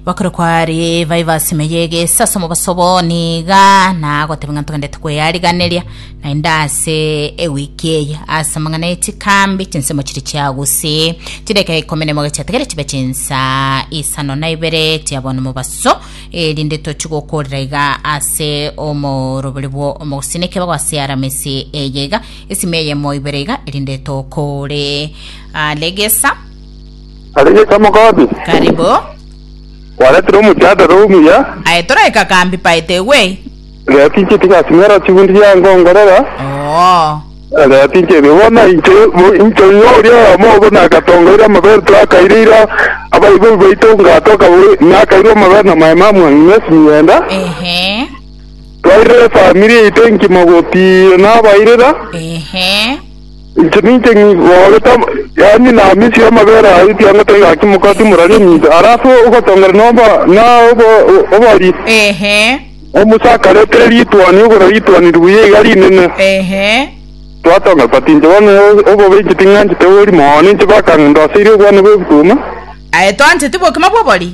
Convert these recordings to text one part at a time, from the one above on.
Bakure kwari baye basimeye egesa ase omobaso obo niga nagoteba ng'a togendete kweyariganeria naende ase ewiki eye ase amang'ana ye chikambi chinsemo chiri chiagusii chideka ikomi nemo gechiatigere chibe chinsa isano na ibere chia bono mobaso erinde tochi gokorera iga ase omorobori bwo omogusini ekebago ase aramisi eye iga esime eyemo ibere iga erinde tokore ah, regesa Aria Yesu amokabia, Kare bo. Kwaretire omochando ore omuya. Aye toraika kambi paete egwei. Rera tinche tigasing'era chigundi gia nkongorera. Oo. Rera tinche erio bono inche inche ng'a oria oyomo obo nagatongoire amabere twakaire ira abaibori baito ngatoka nakairwe amabere na maema amwang'ina ase migenda. Ehe. Twairire efamiri yaito engima gotiira nabairera. Ehe. Inche ninche ng'igorete yaani namisie amabere aye ekiagera taigaki mokato morari ominto, ara ase ogotongera noba na obo- obori. Ehe. Omusa akaretera rituani igoro rituani ribuya iga rinene. Ehe. Twatonga koti inche bono obobe inche ting'anchete obori mono, inche bakang'unda ase iri obwane bw'ebituma. Aye toancheti bokima bw'obori.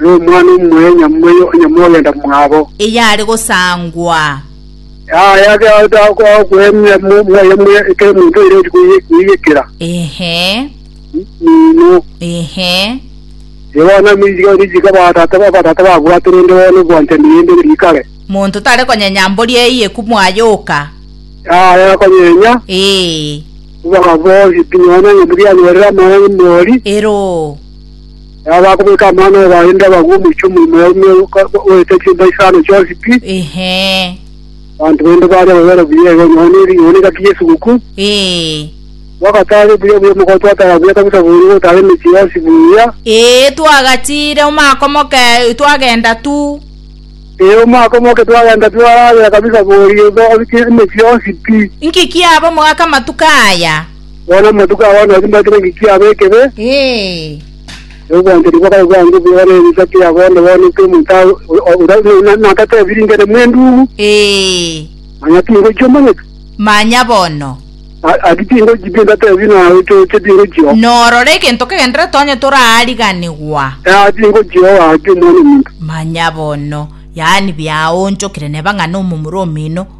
Nomwana omuya nyamweyo onye mogenda mwabo. Eyare gosangwa. Yaya egento agokwemia moyo muya ekero omonto oire ori koiyekera. Ehe. Mino. Ehe. Ebona amiga ori jika batata ba batata babwate rende bona obwanchani rende rikare. Monto tare konyenya mbori eyie kumwaya oka. Yaya konyenya. Ee. Obagabo ori pinyona ng'a murianyorere amaya ng'a mori. Ero. Nabo bakomoika amang'ana oye barenge abagwe omochie omoimo ya ime oete chiomba isano chionsi pi. Ehe. Abanto baino baaria babere buya igo nonya one rigena egati y'esugukuu. Ee. Twagataare buya buya omogoko twataara buya kabisa bono gotaara emechie yonsi buya. Ee, twagatiire omaka omoke twagenda tu. Ee, omaka omoke twagenda twararera kabisa boria igo emechie yonsi pi. Inki kiaba omogaka amatuko aya? Bono amatuko abo nabwo timbakire engaki yabo ekebe, Ee. na obwanchani bwabo bwange boba nebicha kia bono bono ekio omonto a- o- o- ora buna na- nagatebi ringene mwendumu, Ee. manya tingochia omanyete. Manya bono. A- Ati tingochia binto atebi naye ochoche tingochia o- Norore egento kegenderete onye toraariganigwa. Ah, tingochia o ake omwana omonto. Manya bono. Yaani biaonchokire neba ng'a nomomura omino.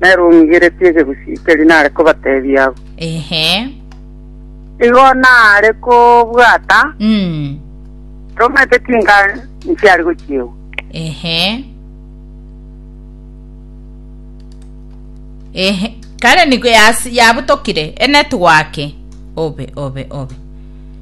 nere ong'igeretie ekegusii keria nare kobateebia abwo. Ehe. Igo nare kobwata Mm. romete chinka nchiare gochiegwa. Ehe. Ehe. Kare nigo yas- yabutokire enetwake. Obe, obe, obe.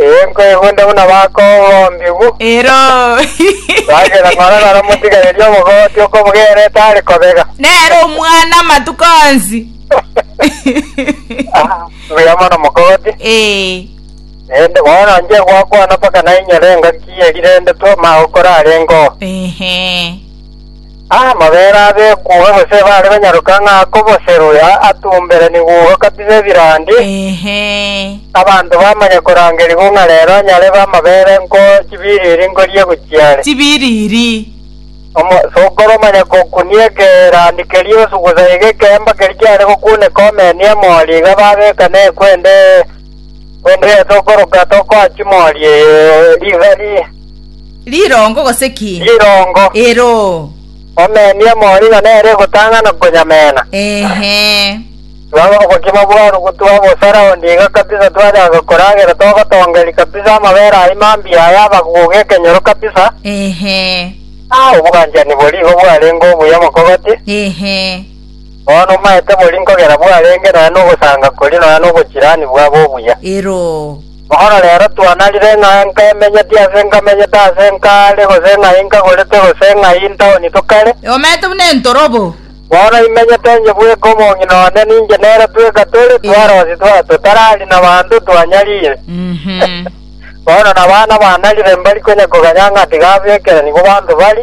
Ee, nkoegwenta buna bakogombigwa. Ero. Sagera ng'ora naro motigarerie obogooti okobogera etari kobega. Nere omwana amatuko onsi. Ah, mbuya mono mokogooti. Ee. Naende bono nche gwakwana mpaka nainyore engaki erirendetwe omao okorarenge oo. Ehe. Amabera abekugwa gose bare banyaroka ng'a akoboserwe atumberenigwe igwa kabisa ebirandi, abanto bamanye korangerigwa ng'a rero nyarebe amabere nko chibiriri nkoria gochia are. Chibiriri. Omosokoro omanye kokunia ekerandi keria osugusa iga ekeemba keria kiare gokuneka omeni emori iga babeka nekwende, kwende yase okoroka tokoachi mori eye rigari. Rirongo gose ki? Rirongo. Eroo. Omenia omorino nere ogotang'ana konyamena. Ehe. Twaba obogima bw'aru gotwa bosara onde iga kabisa twachaka koragera togotongeri kabisa amabere ayio mambia aya abaguga ekenyoro kabisa. Ehe. Ah, obwanchani boria igo bwarenge obuya mokogoti. Ehe. Bono omaete boria nkogera bwarenge nonya nogosanga koria nonya nobochirani bwabo obuya. Eroo. Bono rero twanarire ng'a nkemenyeti ase nkamenyete ase nkare, gose ng'a inkagorete gose ng'a intaoni tokare. Eomete buna entorobo. Bono imenyete inche bweka omong'ina one, ninche nere tweka tore twarosi twa totarari nabanto twanyarire. Bono nabana banarire mbari konya koganya ng'a tiga bekerani bobanto bari.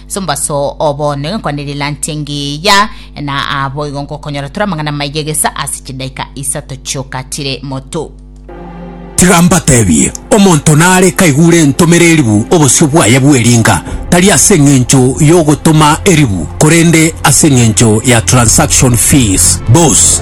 Sombaso o bono egekwane rilanti engiya, na boigo ngokonyora tore amang'ana amaya gesa ase chidaika isato chiokatire moto. Tiga mbatebie, omonto nare kaigure entomera eribu obosio bwaye bw'eringa, tari ase engencho y'ogotoma eribu, korende ase engencho ya transaction fees, bos.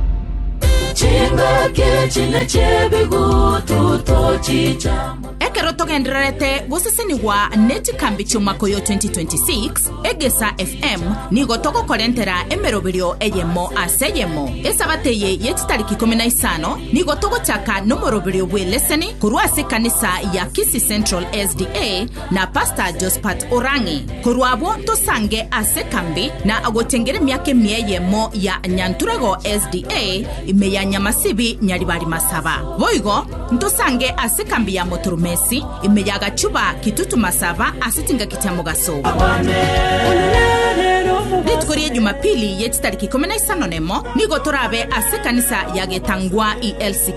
Ekero togendererete gosesenigwa ne chikambi chi'omwaka oyo 2026, Egesa FM nigo togokorentera emeroberio eyemo ase eyemo. Esabato eye ye chitariki ikomi na isano nigo togochaka nomoroberio bw'eleseni korwa ase ekanisa ya Kisii Central SDA, na Pastor Jospat Orang'e, korwa abwo tosange ase kambi na agochengera emiaka emia eyemo ya Nyanturego SDA ime ya Nyamasibi Nyaribari Masaba. Boigo ntosange ase kambi ya Motoromesi ime ya Gachuba Kitutu Masaba ase chingaki chia mogaso. Rituko ria Jumapili ye chitariki ikomi na isano nemo nigo torabe ase ekanisa ya Getangwa ELC